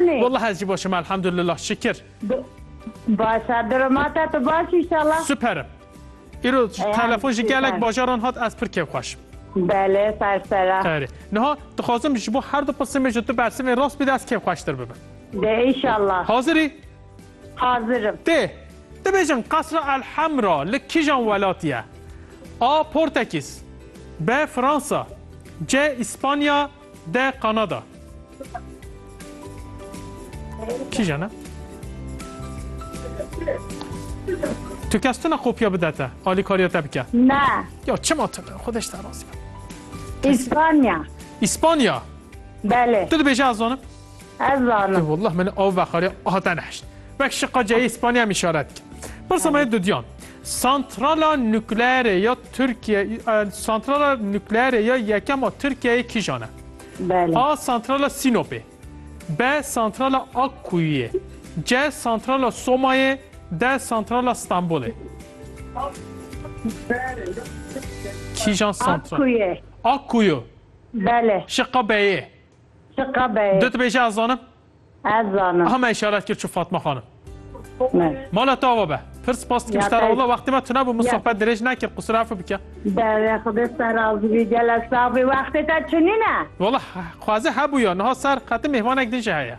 Lê. Wallah ez jî baş im elhamdulillah şikir. Baş e dirim ata tu baş inşallah. Super im. Îro telefon ji gelek bajaran hat ez pir kêfxweş im. Belê ser ser e. Erê. Niha dixwazim ji bo her du qisimê ji tu bersivên rast bide ez kêfxweştir bibim. Dê inşallah. Hazir î? Hazir im. Dê. Dibêjin Qesra El Hemra li kîjan welatî ye? A. Portekîz B. Fransa C. Îspanya D. Kanada Kîjan e? Tu kes tune kopya bide te, alîkariya te bike. Ne. Ya çima tu ne? Xwedeş te razî be. İspanya. İspanya. Belê. Tu dibêje ez zanim. Ez zanim. Wallah min ew veqarê hate nehişt. Wek şiqa ceyê Spanya em îşaret dikin. Pirsa me dudiyan. Santrala nukleere ya Tirkiye santrala nukleere ya yekem a Tirkiyeyê kîjan e? Belê. A santrala Sinopê. B santrala Akkuyuyê. C santrala Somayê. D santrala Stanbolê. Kîjan santral? Akkuyu. Akkuyu. Belê. Şiqa B'yê. Çi qebeyê? Du dibêje ez zanim? Ez zanim. Aha me îşaret kir çû Fatma xanim. Me. Mala te ava be. Pir spas dikim ji te re walla wextê me tune bû min sohbet dirêj nekir qusir efi bike. Dere xwedê te ser razî bî gele sexbî wextê te çinîne. Walla xwaze hebûya niha ser qetin mêhmanek din jî heye.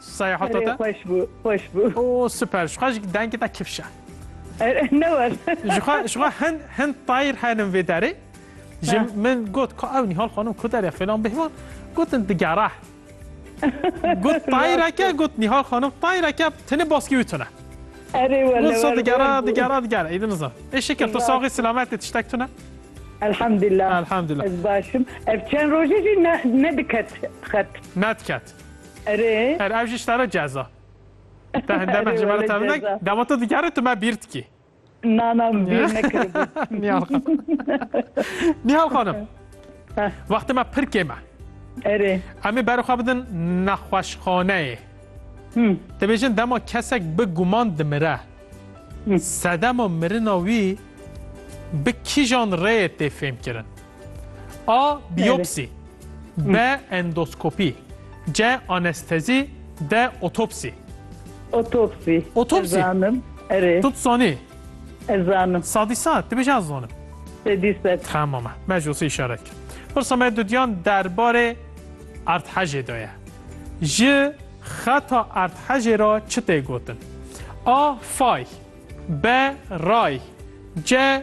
Seyahata te? Xweş bû, xweş bû. O super, ji xwe jî dengê te kifş e. Ne were. Ji xwe ji xwe hin hin tayr henin vê derê. Ji min got ku ew Nîhal xanim ku derê fêlan bêhman gotin digere. Got tayreke got Nîhal xanim tayreke tini baskî wî tune. Erê wele. Got so digere digere digere. Êdin nizam. Ê şekil tu saxî selamet ê tiştek tune. Elhamdülillah. Elhamdülillah. Ez başım. Ev çend roje jî ne ne diket xet. Ne diket. Erê. Erê ev jî ji te re ceza. Te hinde me ji me re tevil nek. Dema tu digerî tu me bîr dikî. Na na bîr nekiribû. Nihal xanim. Nihal xanim. Wextê me pir kêm e. Erê. Em ê berê xwe bidin nexweşxaneyê. Dibêjin dema kesek bi guman dimire. Sedema mirina wî bi kîjan rêyê tê fêmkirin? A. Biyopsî B. Endoskopî C. Anestezî D. Otopsî Otopsî. Otopsî. Ez zanim. Erê. Tu dizanî? Ez zanim. Sadî sad, tu bêjî ez zanim. Sedî sed. Tamam e. Me ji wisa îşaret kir. Pirsa me dudiyan derbarê erdhejê de ye. Ji xeta erdhejê re çi tê gotin? A. Fay B. Ray C.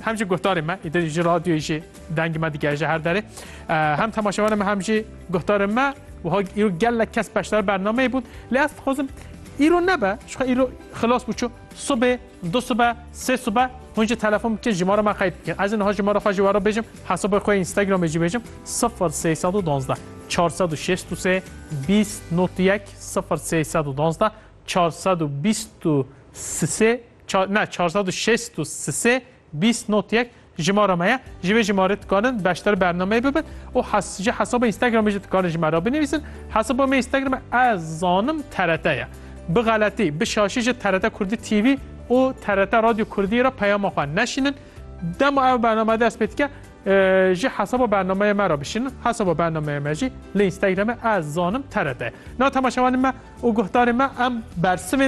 Hem jî guhdarên me îdir ji radyoyê jî dengê me digere ji her derê. Hem temaşevanên me hem jî guhdarên me wiha îro gelek kes beşdar bernameyê bûn. Lê ez dixwazim îro nebe jixwe îro xilas bû çû subê du sibe sê sibe hûn jî telefon bikin ji mara me qeyd bikin. Ez niha ji mara xwe jî were bêjim hesabê xwe Instagramê jî bêjim sifir sê sed û duwazdeh çar sed û şêst û sê bîst nû yek sifir sê sed û duwazdeh çar sed û bîst û sê Çar, ne, çar sed û şêst û sisê bîst not yek jimara me ye. Ji vê jimarê dikarin beşdar bernameyê bibin û hes, ji hesaba Instagramê jî dikarin ji me re binivîsin. Hesaba me Instagramê ez zanim TRT ye. Bi xeletî, bi şaşî ji TRT Kurdî TV û TRT Radyo Kurdiyê re peyama xwe neşînin. Dema ev bername dest pê dike, ji hesaba bernameyê me re bişînin. Hesaba bernameyê me jî li Instagramê ez zanim TRT ye. Na temaşevanên me û guhdarên me em bersivên